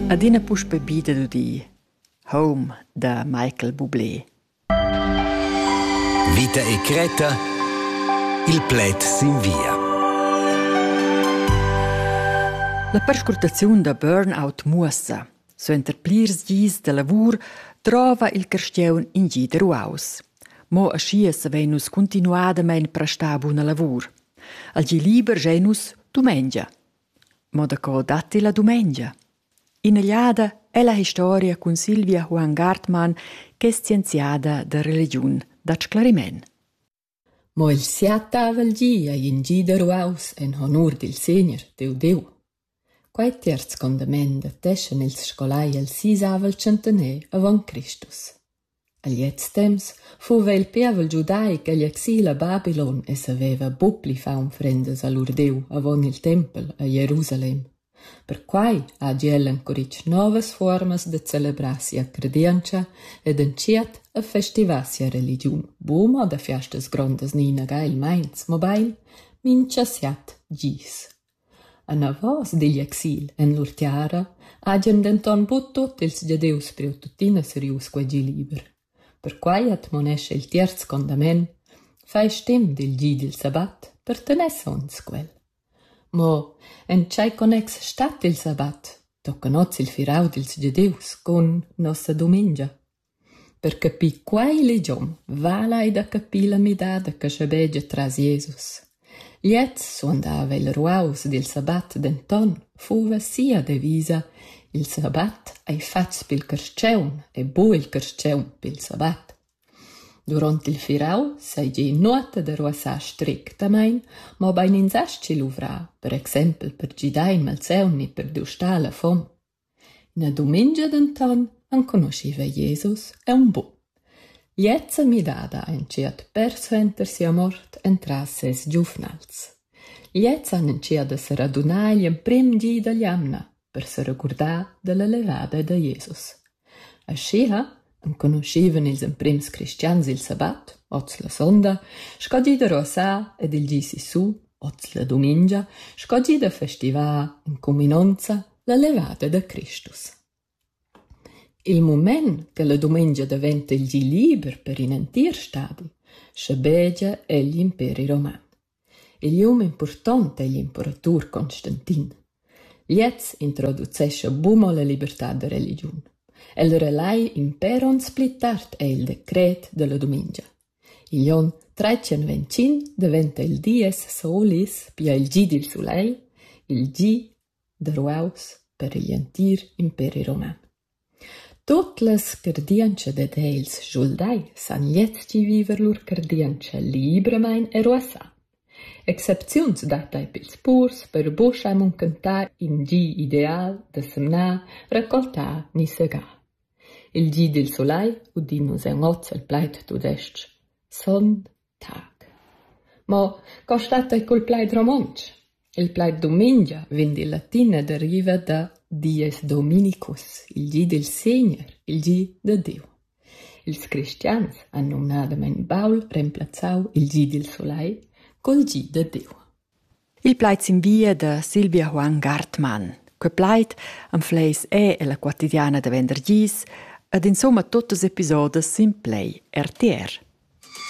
Adina puspè bida d'udir Home da Michael Bublé. Vita e Creta Il pled sin via. La perscrutaziun da burnout muossa, suenter plirs dis da lavur, trova il carstiaun in gi da ruaus. Mo aschia savein nus continuadamein prestar buna lavur. Al gi liber gein nus dumengia. Mo daco datti la dumengia? In'egliada ella historia cun Silvia Juan Gartmann che es scienziada da religiun da sclariment. Mo il siatavel gi ei in gi da ruaus en honur dil Segner, Deu Deu. Quei terz condament dateschan ils scolai el sisavel centener avon Cristus. A gliez temps fuva il pievel giudai ch'egl exila Babylon e saveva buc pli far unfrendas a lur Diu avon il tempel a Jerusalem. Perquei hagi el encuritg novas fuormas da celebrar sia credientscha ed entschiet a festivar sia religiun, buca mo da fiastas grondas ni inaga il meins, mobein mintga siat gis. Anavos digl exil en lur tiara hagien denton buc tut ils Gieus priu tuttina serius quegi liber. Perquei admonescha il tierz condament: Fai stim dil gi dil sabbat per tener sogns quel. Mo en tschei connex stat il sabbat? Tocca oz il firau dils Gieus cun nossa dumengia. Per capir quei ligiom vala ei da capir la midada che schabegia tras Jesus. Gliez suandava il ruaus dil sabbat, denton fuva sia devisa: Il sabbat ei fatgs pil carstgaun e buc il carstgaun pil sabbat. Duront il firau seigi nuota da ruassar strictamein, mobein ins astgi luvrar, per exempel per gidar in malsaun ni per dustar la fom. Ina dumengia denton enconuschiva Jesus aunc buc. Gliezza midada ein tschert persuenter sia mort entras ses giuvnals. Gliezza han entschiet da seradunar igl emprem di dall'jamna per seregurdar dalla levada da Jesus. Aschia Enconuschevan ils emprims cristians il sabat, oz la sonda, sco di da ruassar ed il di sissu, oz la dumengia, sco di da festivar en cuminonza la levada da Cristus. Il mument che la dumengia daventa il di liber per in entir stadi, schabegia egl imperi roman. Il um impurtont ei l'imperatur Constantin. Gliez introducescha buca la libertad da religiun. El relai impèr onns pli tard ei il decret dalla dumengia. Igl onn tretschenventschin daventa il dies Solis, pia il gi dil sulegl, il gi da ruaus per igl entir imperi roman. Tut las cardientschas dad els schuldai san leztgi viver lur cardientscha libramein e ruassà. Excepziuns dattai pils purs per buca munchentar in gi ideal da semnar, raccoltar ni segar. Il gi dil sulai udin nus en oz el plaid tudestg: Sonn. Tac. Mo co stat ei cul plaid romontsch? Il plaid dumengia vegn dil latin e deriva da Dieus dominicus, il gi dil Segner, il gi da Diu. Ils cristians han numnadamein baul remplazzau il gi dil sulai col gi da Diu. Il plaid sinvia da Silvia Juan Gartmann. Quei plaid anfleis è ella quotidiana da vender gis ed insomma tuttas episodas sin Play RTR.